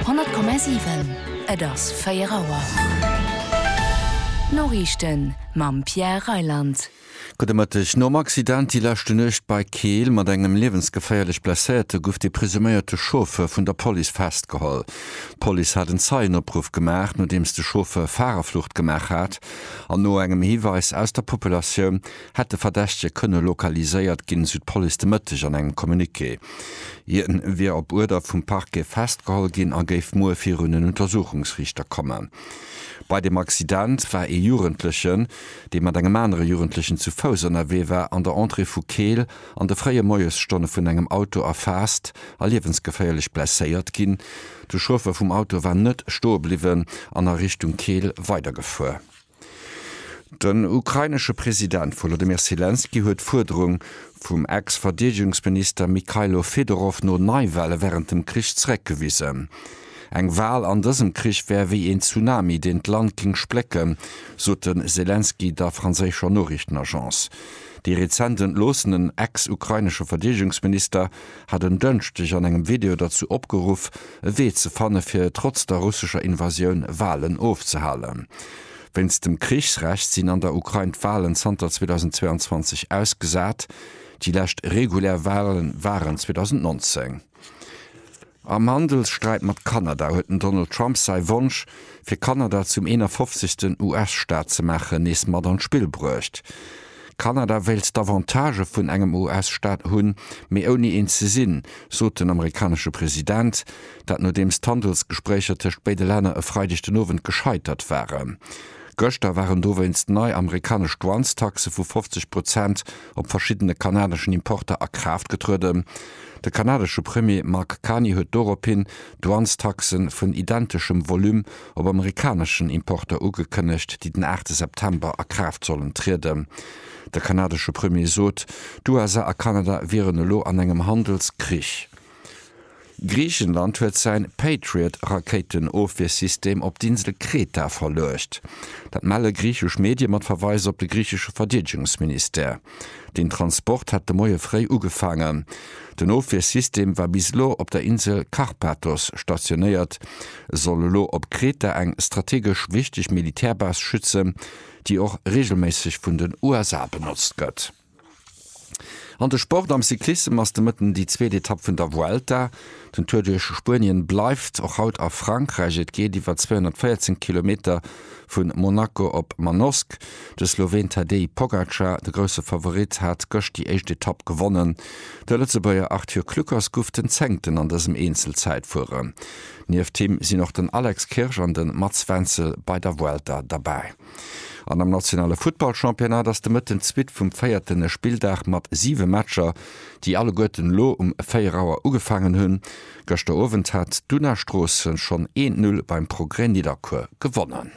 100,7 Et ass 4 Auer. D'Noriichten mam Pierre Reyland. Gudde Mëtteg. Nom Accident déi leschte Nuecht bei Keel mat engem liewensgeféierlech Blesséierte gouf de presuméierte Chauffeur vun der Police festgeholl. D'Police hat en Zeienopruff gemaach, nodeems de Chauffeur Farerflucht gemaach hat an no engem Hiweis aus der Populatioun hätt de Verdächtege kënne lokaliséiert ginn, esou d'Police de Mëtteg an engem Communiqué. Hien wier op Uerder vum Parquet festgeholl ginn a géif muer virun en Untersuchungsriichter kommen. Bei dem Accident war ee Jugendlechen, dee mat engem anere Jugendlechen zu Fouss ënnerwee war, an der Entrée vu Keel an de fréie Moiesstonne vun engem Auto erfaasst a liewensgeféierlech blesséiert ginn. De Chauffer vum Auto war net stoe bliwwen an a Richtung Keel weidergefuer. Den ukrainesche President Wolodymyr Selenskyj huet d'Fuerderung vum Ex-Verdeedegungsminister Mykhailo Fedorov no Neiwale wärend dem Krich zeréckgewisen. Eng Wal an dësem Krich wär wéi een Tsunami, deen d'Land géing splécken, sot de Selenskyj der franséischer Noriichtenagence. Déi rezent entloossenen ex-ukrainesche Verdeedegungsminister hat en Dënschdeg an engem Video derzou opgeruff, e Wee ze fanne fir trotz der russescher Invasioun Walen ofzehalen. Wéinst dem Krichsrecht sinn an der Ukrain d'Walen zanter 2022 ausgesat. Déi lescht regulär Wale waren 2019. Am Handelssträit mat Kanada huet den Donald Trump säi Wonsch, fir Kanada zum 51. US-Staat ze maachen, nees mat an d'Spill bruecht. Kanada wéilt d'Avantagë vun engem US-Staat hunn, mee ouni een ze sinn, sot den amerikanesche President. Dat nodeems d'Handelsgespréicher tëscht béide Länner e Freideg den Owend gescheitert waren. Gëschter waren dowéinst nei amerikanesch Douanestaxe vu 50 Prozent op verschiddene kanadeschen Importer a Kraaft getrueden. De kanadesche Premier Mark Carney huet dorophin Douanestaxe vun identeschem Volume op amerikaneschen Importer ugekënnegt, déi den aachte September a Kraaft sollen trieden. De kanadesche Premier sot, d'USA a Kanada wieren elo an engem Handelskrich. Griichenland huet säi Patriot-Rakéiten-Ofwiersystem op d'Insel Kreta verluecht. Dat melle griichesch Medie mat Verweis op de griichesche Verdeedegungsministère. Den Transport hat de Moie fréi ugefaangen. Den Ofwiersystem war bis elo op der Insel Karpathos stationéiert, soll elo op Kreta eng strategesch wichteg Militärbase schützen, déi och reegelméisseg vun den USA benotzt gëtt. An de Sport, Am Cyclissem ass de Mëtten déi zweet Etapp vun der Vuelta. Den Tour duerch Spuenien bleift och haut a Frankräich. Et geet iwwer 214 Kilometer. Vun Monaco op Manosque, de Sloween Tadej Pogacar, de grousse Favorit, hat gëscht déi éischt Etapp gewonnen. De Lëtzebuerger Arthur Kluckers guff den Zéngten an dësem Eenzelzäitfuere. Nieft him sinn och den Alex Kirsch an de Mats Wenzel bei der Vuelta derbäi. An am nationale Futtballchampionnat ass de Mëtten d'Suite vum véierte Spilldag mat siwe Matcher, déi alleguerten elo um 4 Auer ugefaangen hunn, Gëschter Owend hat d'Una Stroossen schonn een Null beim Progrès Nidderkuer gewonnen.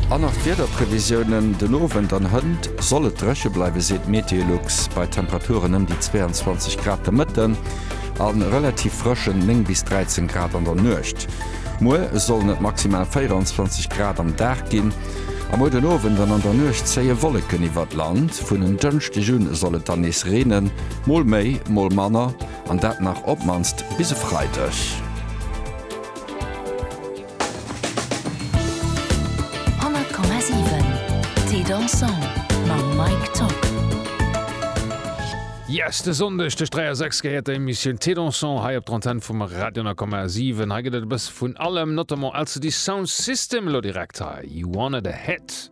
An nach d'Wiederprevisiounen, Den Owend an hënt soll et dréche bleiwe seet d'Meteolux, bei Temperaturen ëm déi 22 Grad de Mëtten a relativ frëschen 9 bis 13 Grad an der Nuecht. Muer sollen et maximal 24 Grad am Dag ginn a muer den Owend an an der Nuecht zéie Wolleken iwwert d'Land. Vun en Dënschdeg un soll et dann nees reenen. Mol méi, mol manner, an dat nach op d'mannst bis e Freideg. Yes, de Sonndeg tëscht 3 a 6 gehéiert der Emissioun Thé Dansant hei op d'Antenn vum Radio 10,7. Hei gëtt et e bësse vun allem, notamment LCD Sound System, elo direkt hei, You Wanted A Hit.